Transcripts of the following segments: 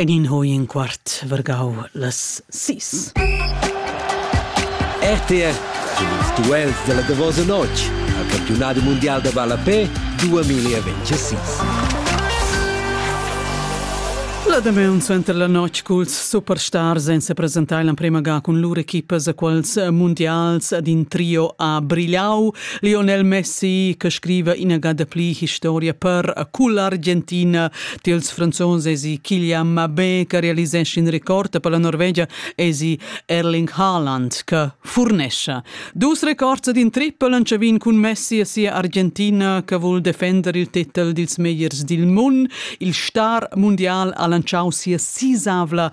Enin ho in quart vargau las sis. RTR cun ils duels della davosa notg al campionat mundial da ballapè 2026. La damaun suenter la notg culs superstars ein sepresentai l'emprema ga cun lur equipas a quels mundials ad in trio a Brigliau. Lionel Messi che scriva inagada pli historia per a cull'Argentina tils franzons esi Kylian Mbappé che realisesce in record per la Norvegia esi Erling Haaland che furnescia. Dus records din triple lanciavin cun Messi e sia Argentina che vul defender il titel dils megliers dil mund. Il star mundial ha lanciau sia sisavla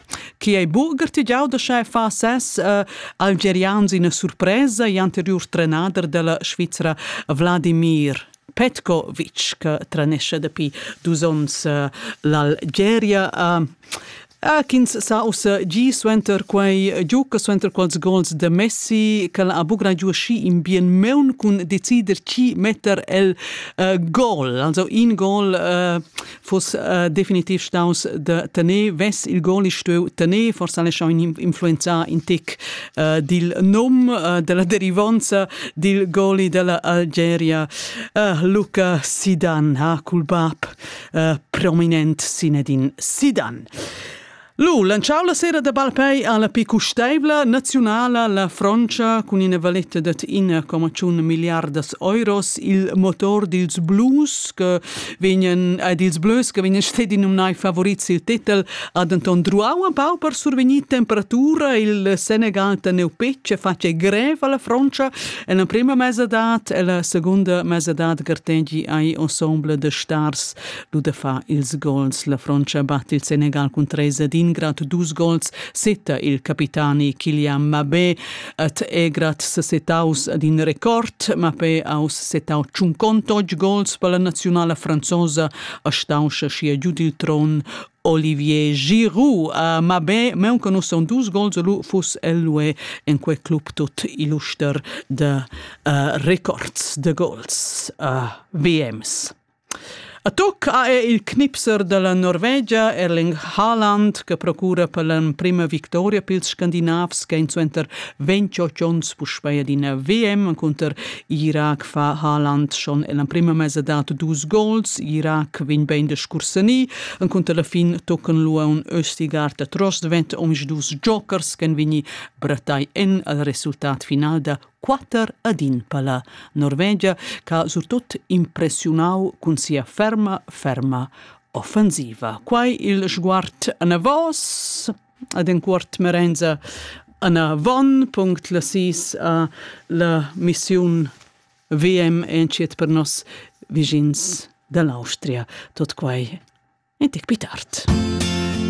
Chi ei burger ti giau da schai fa ses uh, algerians ina surpresa e anteriur trenader della Svizzera Vladimir Petkovic che trenesce dapi dus onns uh, l'Algeria. Uh, Atkins sa ussa gi suenter quei giuca suenter quels gols de Messi che ha bugra giu schi in bien meun cun decider chi metter el uh, gol also in gol uh, fuss äh, definitiv staus de tener vess il goli stueu tener forsa le schau influenzar in tic äh, dil nom äh, della derivanza dil goli della Algeria äh, Luca Sidan ha cul bab äh, prominent Sinedin Sidan Lu lanciau la sera da balpei alla più custeivla naziunala la Frontscha cun ina valetta dad 1,1 milliardas euros il motor dils blues che vegnan ed ils blues che vegnan stedi numnai favorit sil titel ha denton druau un pau per survegnir temperatura il Senegal teneu pecce face grev alla Frontscha e la prima mesadad e la secunda mesadad gartegi ai ensemble de stars Ludefar ils gols. La Frontscha batte il Senegal cun treis ed ingrat dus gols. Setta il capitani Kylian Mbappé at Egrat sesetaus ad in record. Mbappé aus setau tschuncontotg gols per la nazionala franzosa a stauscha schia giud il tron Olivier Giroud a Mabé, meu che nus son dus gols lu fus ellue en quei club tut illuster de uh, records de gols uh, VMs. A tuc ha er il Knipser da la Norvegia Erling Haaland che procura per l'emprima victoria pils Scandinavs che ein suenter 28 onns puspei adina VM encunter Irak fa Haaland schon ell'emprima mesa dat dus gols. Irak vegn bein de scursani encunter la fin tocan lu un Östigard da Trost vent omisdus jokers che vegni brattai en al resultat final da quatter ad in palla Norvegia ch'ha surtut impressiunau cun sia ferma ferma offensiva. Quai il sguard anavos ad enquart Merenza anavon punct la sis a la missiun VM entschiet per nos vischins dall'Austria. Tot quai en tec pli tard.